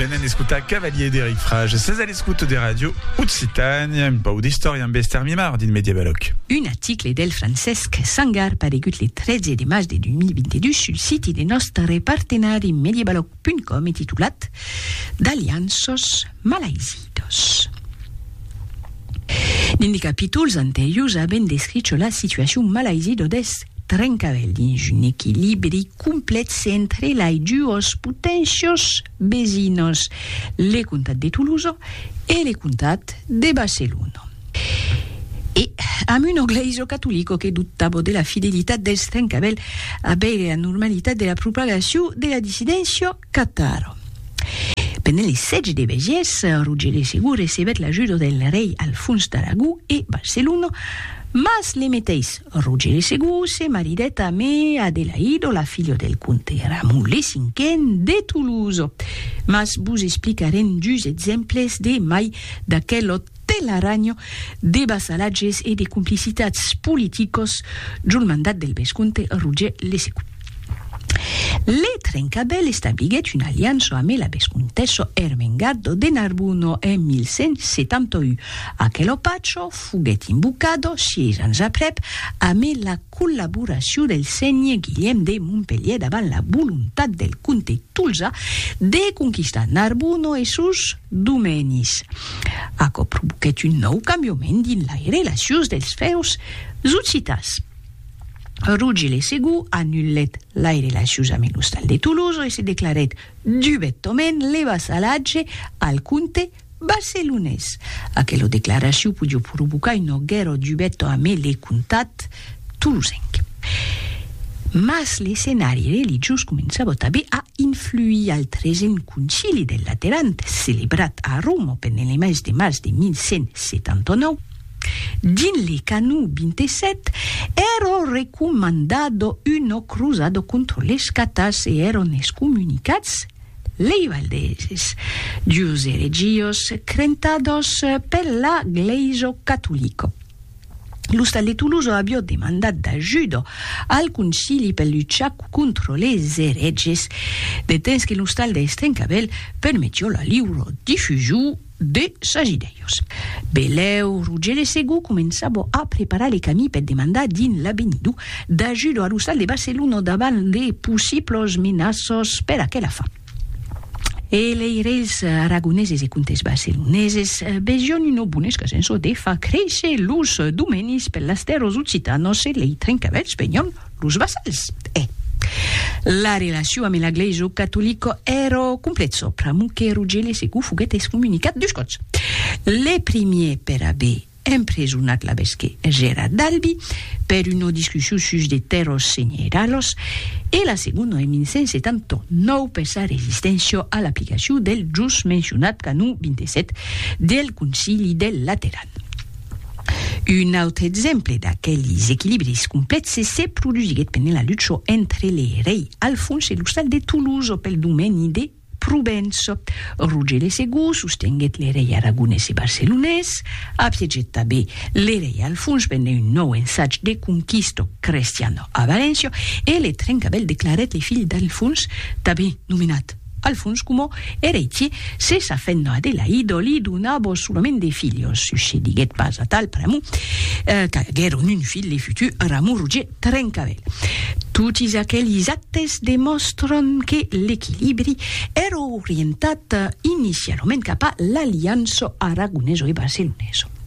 Venen escotar Cavalier d'Eric Frage. Ses a l'escoute de Radio Occitània, un pau d'istòria amb Esther Mimard dins Mediavalòc. Un article del Francesc Sangar paregut le 13 de març de 2022 sul siti de nòstre partenari Mediavalòc.com e titulat D'alianços malaizidos. Dins de capítols anteriors avèm descricho la situacion malaizido deth Trencavèl dins un equilibri complètz entre lai duos poténcios vesinhos, le comtat de Toulouse e le comtat de Barcelona. E amb un oglèiso catolico que dubtavo de la fidelitat dels trencavèl a veire la normalitat de la propagacion de la dissidéncia cataro. Pendent le sètge de Bègies, Roger le Segur recebèt l'ajuda del rei Alfons d'Aragó e Barcelona, mas le meteis Rogèri segon se maridèt a me Adelaido, la filha del comte Ramulli cinquen de Toulouse. Mas vos explicarem dus exemples de mai d'aquelot telaranho de vassalatges e de complicitats politicos djol mandat del vescomte Roger le segon. Le Trencabèl establiguèt una aliança amé la vescontessa Ermengardo de Narbonne en 1171. Aquelo pacho foguèt invocado, sièis ans aprèp, amé la collaboracion del sénher Guilhèm de Montpelhièr davant la volontat del comte Tolzà de conquistar Narbonne e sos domènis. Aquò provoquèt un nòu cambiament dins lai relacions dels fèus occitans. Rugile segur anulèt lai relacions ambe l'ostal de Tolosa e se declarèt dubetament le vassalatge al comte barcelonés. Aquela declaracion podió provocar un auguèro dubèto ambe le comtat tolosenc. Mas l'escenari religiós començava tanben a influir al tresen Concili del Lateran, celebrat a Roma pendent le mes de març de 1179, Dins li canu 27, ero recomandado uno cruzado contro les catas e eron excomunicats lei valdeses, dus eregios crentados per la Glaiso catolico. L'ostal de Tuluzo avió demandat d'ajudo al concili per luchar contro les ereges, de temps que l'ostal de Estrencavèl permetió la liuro difusiu de Sagidèius. Belèu, Rogere Segú començava a preparar le camí per demandar dins l'Avenido d'ajuda a l'ostal de Barcelona davant de possiblas menaças per aquela fin. E lei reis aragoneses e comtes barceloneses vesián una bona escasença de far créisser los domenis per las tèrras occitanas e lei trencavèlhs venián Los vassals, eh! La relacion ame la glaiso catolico ero complezo, pramo que Rugele secu foguet excomunicat dus cots. Le primier per aver empresonat l'abesque Gera d'Albi per una discussion sus de terros senheralos e la segondo en 1179 per sa resisténcia a l'aplicacion del just mencionat canon 27 del Concili del Lateran. Un autre exemple d'aquelis equilibris complèxes se produsiguèt pendent la lucha entre le rei Alfons e l'ostal de Toulouse pel domeni de Provença. Roger le Segur sostenguèt le rei aragonés e barcelonés, apiegèt tanben le rei Alfons pendent un nòu ensatge de conquista crestiana a Valéncia e le Trencavèl declarèt le filh d'Alfons tanben nomenat Al fons coma eretie, se sa fenda de Laïdo li donava solament de filhos, succediguèt pas atal pr'amor qu'aguèron un filh de futur Ramon Roger Trencavèl. Totis aquelis actes demòstran que l'equilibri èra orientat inicialament cap a l'aliança aragoneso e barceloneso.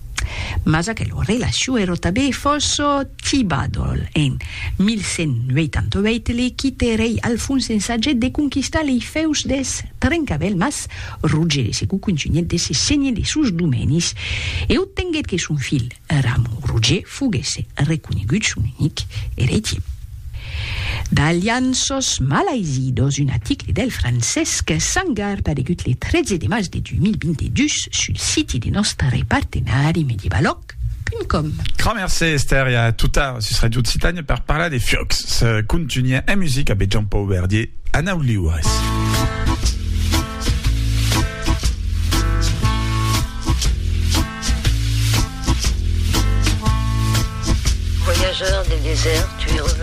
Mas aquelo relaciu ero tabé fòsso tibadol. En 1188 le quite rei Alfons ensagèt de conquistar lei fèus des Trencavèl mas Roger de Segou contunhèt de se senhe de sos domenis e obtenguèt que son filh Ramon Roger foguèsse reconegut son unic eretier. D'alianços malaizidos, un aticle del Francesc Sangar paregut le 13 de mas de 2022 sul siti de nòstre partenari medievalòc.com. Grand mercé Esther e a tot tard sus Radio Occitània per parlar de fiocs. Se contunha en musica abe Jean Pau Verdier a nau liures.